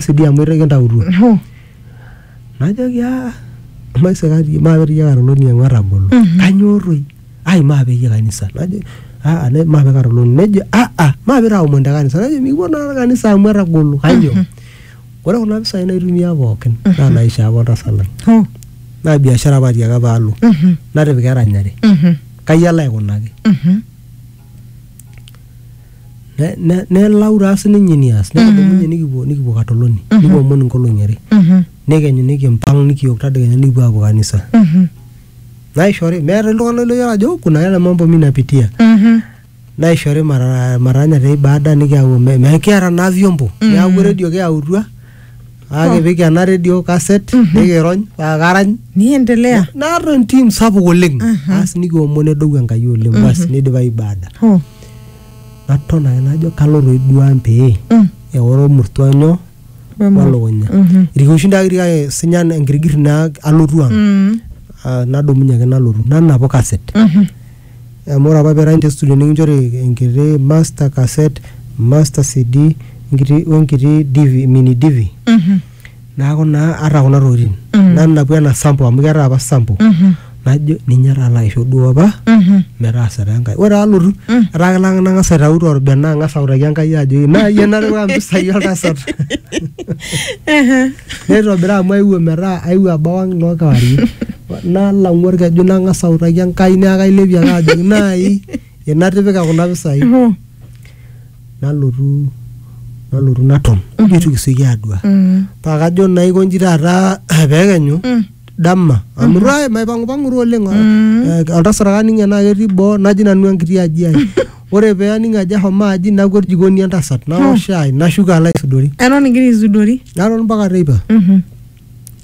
sidii amu itu kintautuo Hoo. najoki "Ah, maisikati maape dii iyie karoloni amu etagolo kanyoo toi ai maape iyie kanisa najo "Ah, ah, ne- maape karoloni nejo "Ah, ah, maape itaomon te kanisa najo mikipuo naa kanisa amu etagolo kanyoo ore kuna pisai naitumia pookin naa naishoo apa oltasat lang Hoo. naa biashara apa atiaka paalo Mhm. natipika eranyare Mhm. kai alo aikunaki Mhm. ne- ne- nelau taa sininye enias nikidumunye nikipuo nikipuo katoloni nikipuo omon inkolong'i are Mhm. nekenyu nikimpang nikiok tadekenya nikipuo apuo kanisa Mhm. naishori meeta iltung'anak loyiolo ajo kuna yale mambo mi napitia Mhm. naishori mara maranya te ibada nikiyau me- me- kiata naa vyombo neaku redio kiyautua akipik ena redio kaset nikirony paa karany niendelea naata entim sapuk oleng asi nikiomon edou enkai oleng basi nidipa ibada oh. naton ake najo kalo toi duo ang pee Mm. eoro ormurtua nyoo Wemo. walukunya Mhm. irkiushin taa kiti kake sinya enkirigir naa alotu ang Mm. Ah, nadumunye ake nalotu nanapu kaset Mhm. amu ore apa pirany te studio nikinchori enkiti master cassette master cd enkiti wenkiti dv mini dv Mhm. Naaku naa ata kuna tokitin mm. nanapu ena sampo amu ketaa apa sampo mm -hmm. najo ninye taa laisho duo apa mm -hmm. metaasa taa Enkai. Ore alotu mm. etaa kelak nang'as aitau torbena ang'as autaki Enkai ajo naa iyie natipika mpisai oltasat neitobira amu aewuo metaa aewuo abau ang' noo kewarie nalang'u orkeju nang'as autaki Enkai neaku kailepie ake ajoki naai Enatipika kuna pisai Mhm. nalotu nalotu naton ajo eitu kisioki aadua Mm. paa kajo naa aikonji taata peekenyu Mm. dama amu taa maipang'upang'u taa oleng Mm. Eh, oltasat ake aning enaa ketii boo naji nanu enkiti aji ai ore pee aning ajo ahomo aji nakwet jikoni entasat naok shai nashuko alo aisudori Eton igira aisudori. naton mpaka teipa Mhm.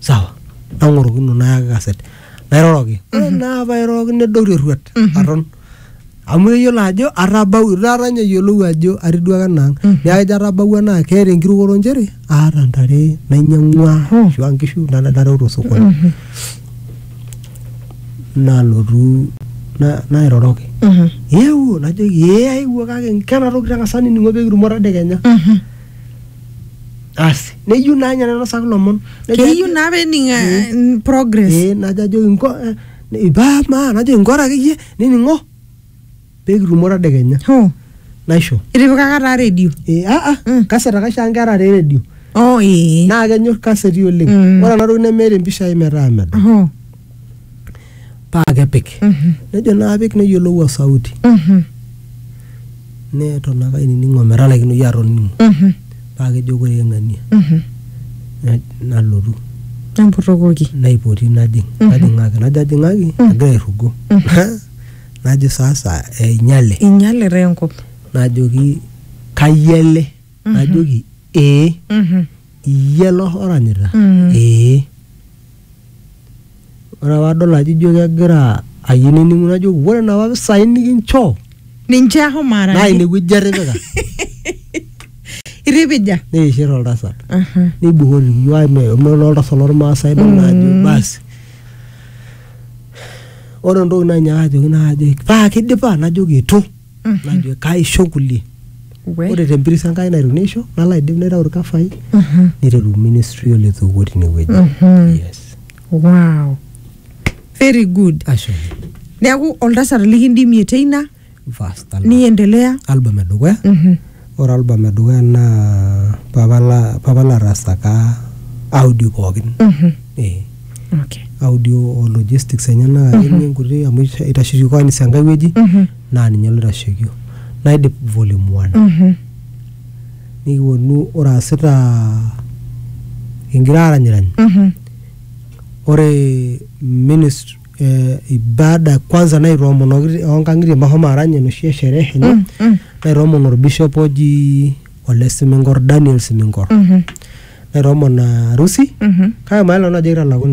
sawa nang'orokino nayaki kaset nairoroki ore naa pairoroki nedou terruat aton amu eyiolo ajo atabau taata ninye eyiolou ajo atiduaka enaang neeku ejo atabawua naa keeta enkirukoto nchere aata ntare nainyang'ua ashua nkishu nana nareu tosokoni nalotu na- nairoroki Mhm. eewuo najoki ee aewuo kake kena toki tang'asa nining'o pekitumo tadekenya Mhm. asi neyieu naa ninye nainosaki lomon Nejo keyieu ajo- naa pening eh, progress ee najo ajoki nko eh, ne- paa maa najoki nkora akeyie nining'o peekitumo tadekenya ho naisho itipikaka taa redio Eh, ah, ah, Mm. kaset ake aisho nkera te redio oh ee naa kenyor kaseti oleng Mm. ore ena toki nemeeta empisha ai metaa medo ho paa kepik nejo naa apik neyiolou osauti neton ake ainining ometalaikino iyie atoning'o paa kejo ore eng'ania na- nalotu emputokoki naipoti najing najing'aki najo ajing'aki agira airrugo najo sasa einyale inyalita enkop najoki kai ele najoki ee Mhm. iyie lo oranyita Mm. ee ore apa adol ajo ijo kegira ayieu nening'u najoki ore napa pisai nikinchoo ninche ahomo naa araki inewueji etipika iripija neishir oltasat Mhm. neibukori iyiok meolo oltasat lormaasai idol naa ajo Mm. basi ore entoki nanyaaka ajoki naa ajoki paa kidipa najoki itu najo kaisho kulie We. ore tempiris enkai naiteru neisho nalo aidip naitau irkafai Mhm. niteru ministry oletoiwuo tinewueji Mhm. yes wow very good ashe neeku oltasat likindimie teina fast album, niendelea album edukuya Mhm. Ore album edukuya naa papa la papa la rasaka audio pookin. Eh, Okay. audio o logistics enyena akeyie nkuti amu isha- itasheki kwanz enkae wueji naa ninye loitashekio. Naidip volume one. Mhm. Nikiwuonu ore aasita kingira aranyirany Mhm. ore ministry eh, ibada kwanza naitoomonoki oo nkang'itie meshomo arany enoshi e sherehe enye Mm, mm. naitoomon orbishop oji ole siminkor daniel siminkor Mhm, naitoomon arusi mhm. kake mayiolo nanu ajo kitalakuni